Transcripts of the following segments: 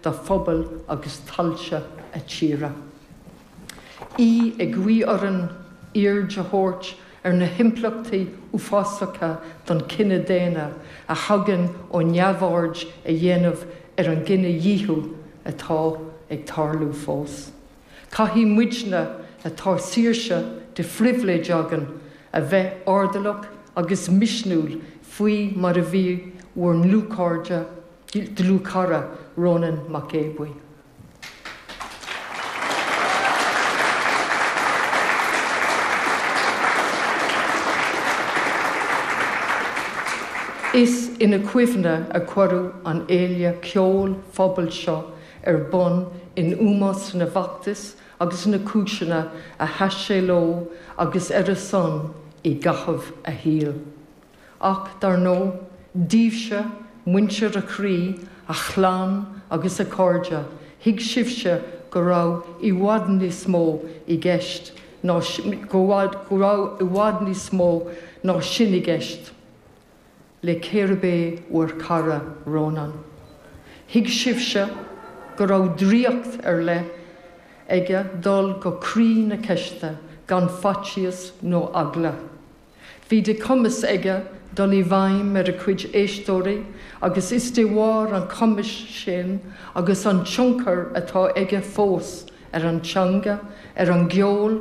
dá pobail agus tailte a tíre. Í ag guí orainn aird a thabhairt ar na himpleachtaí uafásacha don chine daonna a thagann ó neamhaird a dhéanamh ar an gcinedhíothú atá ag tarlú fós. Caithfidh muidne, atá saoirse de phribhléid againn, a bheith airdeallach agus misniúil faoi mar a bhí bhur ndlúthchairde, dlúthchara Rónán Mac Aodha Bhuí. Is ina chuimhne a cuireadh an fhéile cheoil phobail seo ar bun in ómós na bhfeachtas agus na cúiseanna a sheas sé leo agus ar a son i gcaitheamh a shaoil. ach dar ndóigh, daoibhse, muintir a chroí, a chlann agus a chairde, thuig sibhse go raibh i bhfad níos mó i gceist nó go raibh i bhfad níos mó ná sin i gceist le cérbh é bhur cara Rónán. Thuig sibhse go raibh draíocht ar leith aige dul go croí na ceiste gan faitíos nó eagla. Bhí de chumas aige dul i bhfeidhm ar a chuid éisteoirí agus is de bharr an chumais sin agus an tionchair atá aige fós ar an teanga, ar an gceol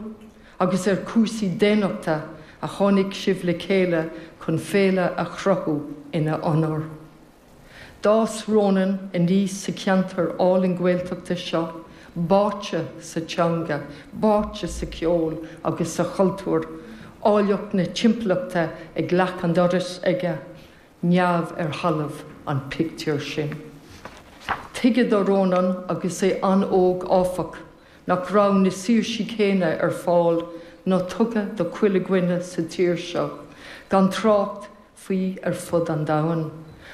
agus ar chúrsaí daonnachta a tháinig sibh le chéile chun féile a chruthú ina onóir. D'fhás Rónán aníos sa cheantar álainn Gaeltachta seo, báite sa teanga, báite sa cheol agus sa chultúr, áilleacht na timpeallachta ag leac an dorais aige, neamh ar thalamh an pictiúr sin. Tuigeadh do Rónán agus é an-óg, áfach, nach raibh na saoirsí céanna ar fáil ná tugtha do chuile dhuine sa tír seo, gan trácht faoi ar fud an domhain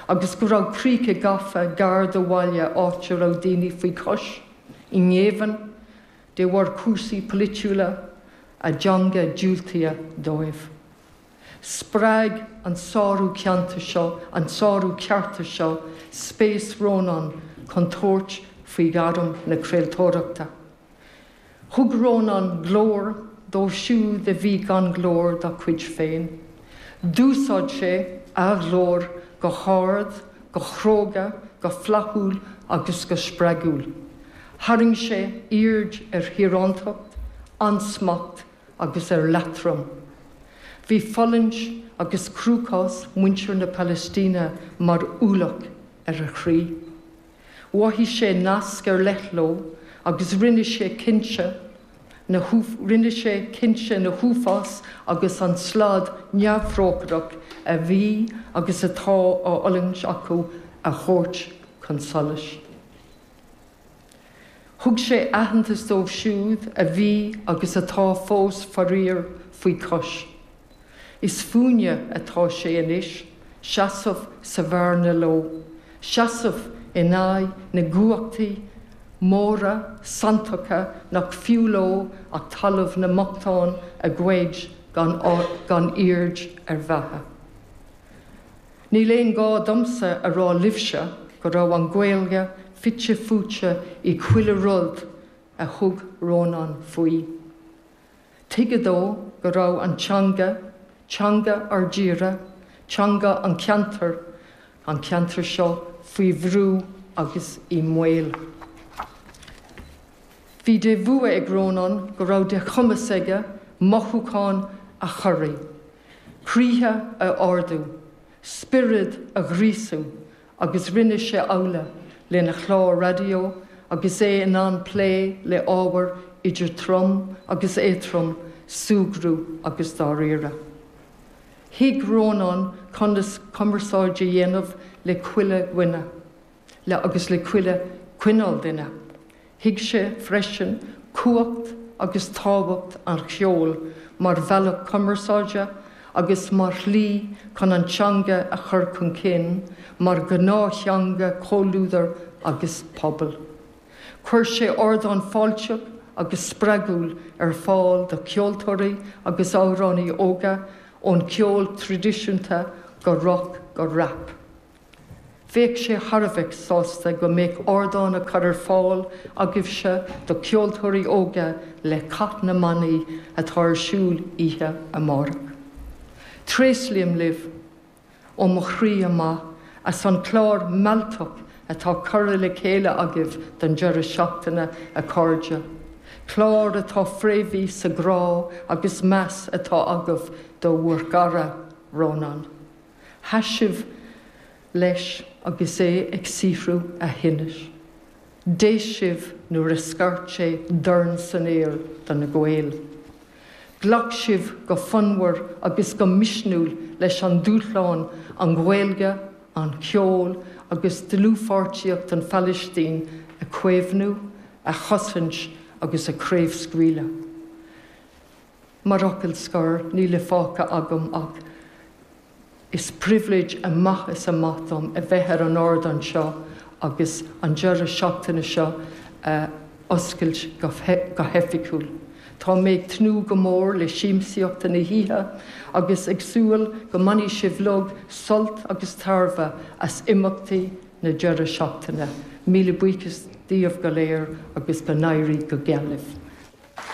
agus go raibh críocha gafa gar do bhaile áit a raibh daoine faoi chois i ngéibheann de bharr cúrsaí polaitiúla a dteanga diúltaithe dóibh. Spreag an sárú ceanta seo, an sárú cearta seo, spéis Rónán chun tabhairt faoi ghairm na craoltóireachta. Thug Rónán glór dóibh siúd a bhí gan glór dá gcuid féin. D'úsáid sé a ghlór go hard, go cróga, go flaithiúil agus go spreagúil. Tharraing sé aird ar thíorántacht, ansmacht agus ar leatrom. Bhí fulaingt agus cruachás mhuintir na Palaistíne mar ualach ar a chroí. Mhaith sé nasc ar leith leo agus rinne sé cinnte rinne sé cinnte na huafáis agus an slad neamhthrócaireach a bhí agus atá á fhulaingt acu a thabhairt chun solais. Thug sé aitheantas dóibh siúd a bhí agus atá fós faraor faoi chois. Is fúinne atá sé anois seasamh sa bhearna leo, seasamh in aghaidh na gcumhachtaí móra santacha nach fiú leo ach talamh na mbochtán a ghoid gan aird ar bheatha. Níl aon gá domsa a rá libhse go raibh an Ghaeilge fite fuaite i chuile rud a thug Rónán faoi. Tuigeadh dó go raibh an teanga, teanga ár dtíre, teanga an cheantair, an cheantair seo, faoi bhrú agus i mbaol. Bhí de bhua ag Rónán go raibh de chumas aige mothúcháin a chorraí, croíthe a ardú, spiorad a ghríosú agus rinne sé amhlaidh lena chlár raidió agus é in ann plé le ábhar idir trom agus éadtrom, súgradh agus dáiríre. Thuig Rónán conas cumarsáid a dhéanamh le chuile dhuine, le agus le chuile chineál duine, Thuig sé freisin cumhacht agus tábhacht an cheoil mar bhealach cumarsáide agus mar shlí chun an teanga a chur chun cinn mar ghnáth-theanga chomhluadair agus pobail. Chuir sé ardán fáilteach agus spreagúil ar fáil do cheoltóirí agus amhránaithe óga ón cheol traidisiúnta go roc go rap. Bheadh sé thar a bheith sásta go mbeadh ardán á chur ar fáil agaibhse do cheoltóirí óga le Cath na mBannaí atá ar siúl oíche amárach. Tréaslaím libh ó mo chroí amach as an chlár mealltach atá curtha le chéile agaibh don deireadh seachtaine, a chairde, clár atá fréamhaithe sa ghrá agus meas atá agaibh do bhur gcara, Rónán. Sheas sibh leis agus é ag saothrú a thinnis. D'éist sibh nuair a scairt sé dorn san aer do na Gaeil. Ghlac sibh go fonnmhar agus go misniúil leis an dúshlán, an Ghaeilge, an ceol agus dlúthpháirtíocht don Phalaistín a chaomhnú, a chosaint agus a chraobhscaoileadh. Mar fhocal scoir, níl fágtha agam ach Is pribhléid amach is amach dom a bheith ar an ardán seo agus an deireadh seachtaine seo a oscailt go hoifigiúil. Tá mé ag tnúth go mór le siamsaíocht na hoíche agus ag súil go mbainfidh sibh uilig sult agus tairbhe as imeachtaí na deireadh seachtaine. Míle buíochas daoibh go léir agus go n-éirí go geal libh.